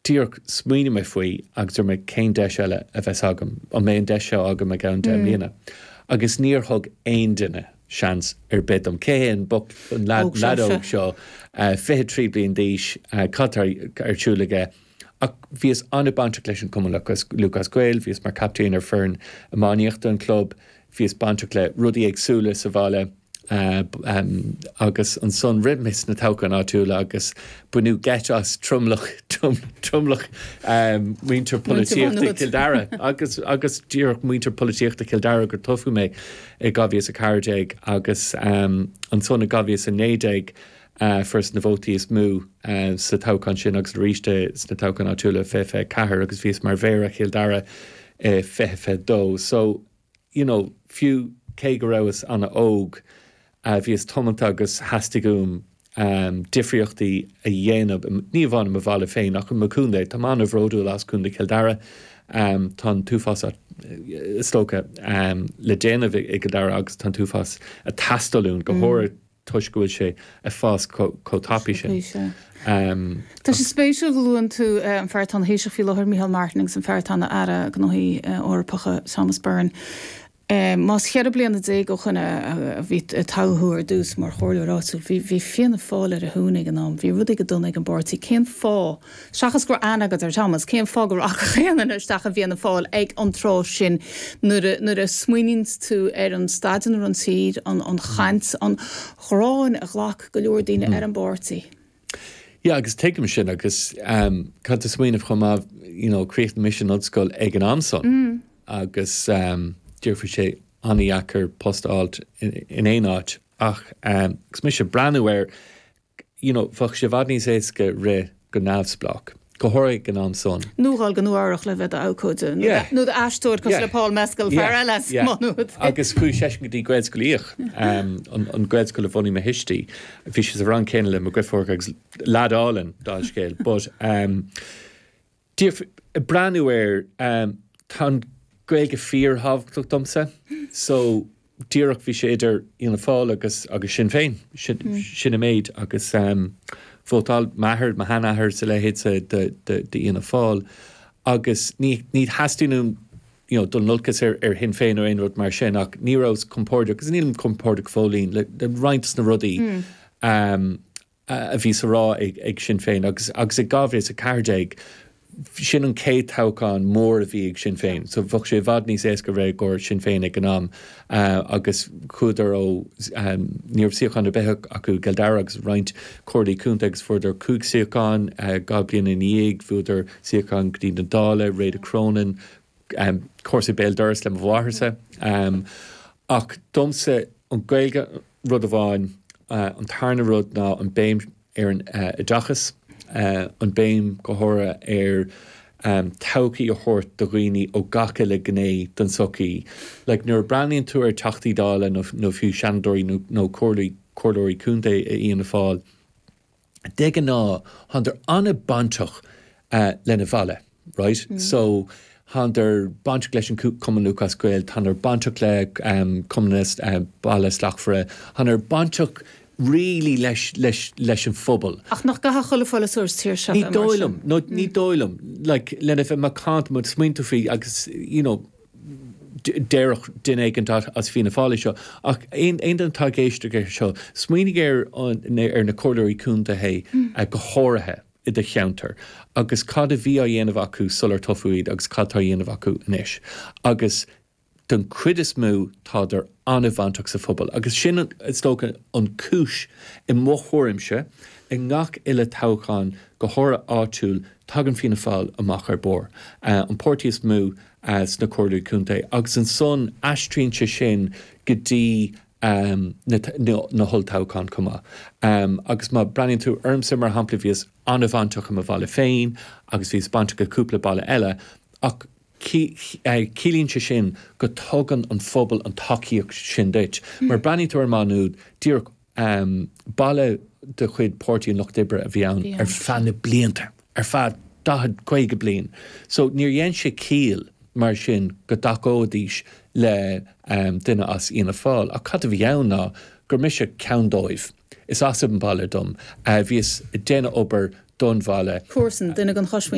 Díreach, smaoinigh mé faoi agus dúirt mé cén deis eile a bheas agam? An mbeidh an deis seo agam i gceann deich mbliana? Agus níor thug aon duine seans ar bith dom. Cé hé an boc, an leaid óg seo, fiche trí bliain d'aois, cad tá ar siúl aige? Ach bhíos an-bainteach leis an gCumann Lúthchleas Gael, bhíos mar chaptaen ar foireann iománaíochta an chlub, bhíos bainteach le rudaí éagsúla sa bhaile. agus ansan rith mé sna toghcháin áitiúla agus baineadh geit as tromlach tromlach muintir polaitíochta Chill Dara agus agus díreach muintir polaitíochta Chill Dara gur toghadh mé i 2014 agus ansan i 2019 fuaireas na vótaí is mó sa toghchán sin agus arís sna toghcháin áitiúla i 2024 agus bhíos mar Mhéara Chill Dara i 2022 so you know fiú cé go rabhas ana-óg bhíos tiomanta agus theastaigh uaim difríochtaí a dhéanamh ní amháin i mo bhaile féin ach i mo chontae. Táim ana-bhródúil as Contae Chill Dara. Tá an t-uafás is dócha le déanamh i gCill Dara agus tá an t-uafás ag teastáil uainn go háirithe. toisc go bhfuil sé ag fás chomh tapaidh sin. Tá sé spéisiúil go luann tú an fear atá ina Thaoiseach faoi láthair, Micheál Martin, agus an fear atá ina Aire Gnóthaí Eorpacha, Thomas Byrne. Más ceithre bliana déag ó shoin a bhí, a toghadh thú ar dtús mar chomhairleoir áitiúil, bhí Fianna Fáil ar a shuan ag an am, bhí rudaí go dona ag an bpáirtí, cén fáth? Seachas go raibh aithne agat ar Thomas, cén fáth go rachadh aon duine isteach i bhFianna Fáil ag an tráth sin? Nuair a smaoiníonn tú ar an staid ina raibh an tír, an chaint, an ghráin a ghlac go leor daoine ar an bpáirtí. Yeah, agus tuigim sin agus ehm, caithfidh tú smaoineamh chomh maith, you know, chríochnaigh mise an ollscoil ag an am san agus ehm, bhí sé an-dheacair post a fháilt in aon áit ach ehm, agus mise ag breathnú ar, you know bheadh sé i bhfad níos éasca rith go neamhspleách, go háirithe ag an am san. nó dul go Nua Eabhrach le bheith i d'abhcóide yeah nó i d'aisteoir cosúil le yeah Paul Mescal, fear yeah eile as yeah Maigh Nuad. Agus chuaigh seisean go dtí Gaelscoil Uí Fhiaich, an an Ghaelscoil a bhunaigh mo thuistí. Bhí sé sa rang céanna le mo dheirfiúr agus leaid álainn, dá fhaid scéil, but ehm, Díreach ag breathnú air, tá an Ghaeilge fíor-thábhachtach domsa, so díreach bhí sé idir Fhianna Fáil agus agus Sinn Féin, sin an méid agus vótáil m'athair, mo sheanathair is a leithéid d'Fhianna Fáil agus ní ní theastaíonn uaim you know dul in olcas ar ar Shinn Féin nó aon rud mar sin ach ní rabhas compordach agus nílim compordach go fóillín le roinnt de na rudaí a a bhí sa rá ag Sinn Féin agus agus i 2014 sin an céad toghchán mór a bhí ag Sinn Féin so bheadh sé i bhfad níos éasca rith i gcomhair Sinn Féin ag an am agus chuadar ó ní raibh suíochán ar bith acu i gCill Dara agus roinnt comhairlí contae agus fuaireadar cúig suíochán dhá bliana ina dhiaidh bhuadar suíochán go dtí na Dála Réada Cronin comharsa béal doras le mo mháthairse ach domsa an Gaeilge an rud amháin. An tarna rud ná an béim ar an oideachas, an béim go háirithe ar todhchaí a thabhairt do dhaoine ó gach uile gné den tsochaí. Like, nuair a breathnaíonn tú ar Teachtaí Dála nó fiú Seanadóirí nó Comhairleoirí Contae i Fhianna Fáil, de ghnáth thándar an-bainteach lena bhaile, right? So, thándar bainteach leis an Cumann Lúthchleas Gael, thándar bainteach le Cumann na Bailte Slachtmhara, thándar bainteach really leis an phobal. Ach nach gcaithfeadh chuile pholaiteoir sa tír seo a bheith mar sin? Ní dóigh liom, nó ní dóigh liom, like, lena bheith macánta, má smaoiníonn tú faoi agus, you know, déarfadh duine éigint as Fianna Fáil é seo, ach aon duine atá ag éisteacht air seo, smaoinigh ar na Comhairleoirí Contae go háirithe i do cheantar agus cad a bhí á dhéanamh acu sular toghadh iad agus cad atá á dhéanamh acu anois. Agus den chuid is mó tádar an-bhainteach sa phobal agus sin is dócha an chúis, i mo thuairimse, i ngach uile toghchán, go háirithe áitiúil, tagann Fianna Fáil amach ar barr, an páirtí is mó. sna Comhairlí Contae agus ansan aistríonn sé sin go dtí na holltoghcháin chomh maith. Agus má breathnaíonn tú ormsa mar shampla, bhíos an-bhainteach i mo bhaile féin agus bhíos bainteach i cúpla baile eile ach ciallaíonn sé sin go dtugann an phobal an tacaíocht sin duit mar breathnaíonn tú ar Maigh Nuad díreach Um baile de chuid Páirtí an Lucht Oibre a bhí ann ar feadh na blianta, ar feadh daichead, caoga bliain, so níor dhein sé ciall mar sin go dtacóidís le duine as Fhianna Fáil. Ach cad a bhí ann ná gur mise ceann dóibh. Is as an bhaile dom. Bhíos ag déanamh obair don bhaile. Comharsan, duine den chosmhuintir.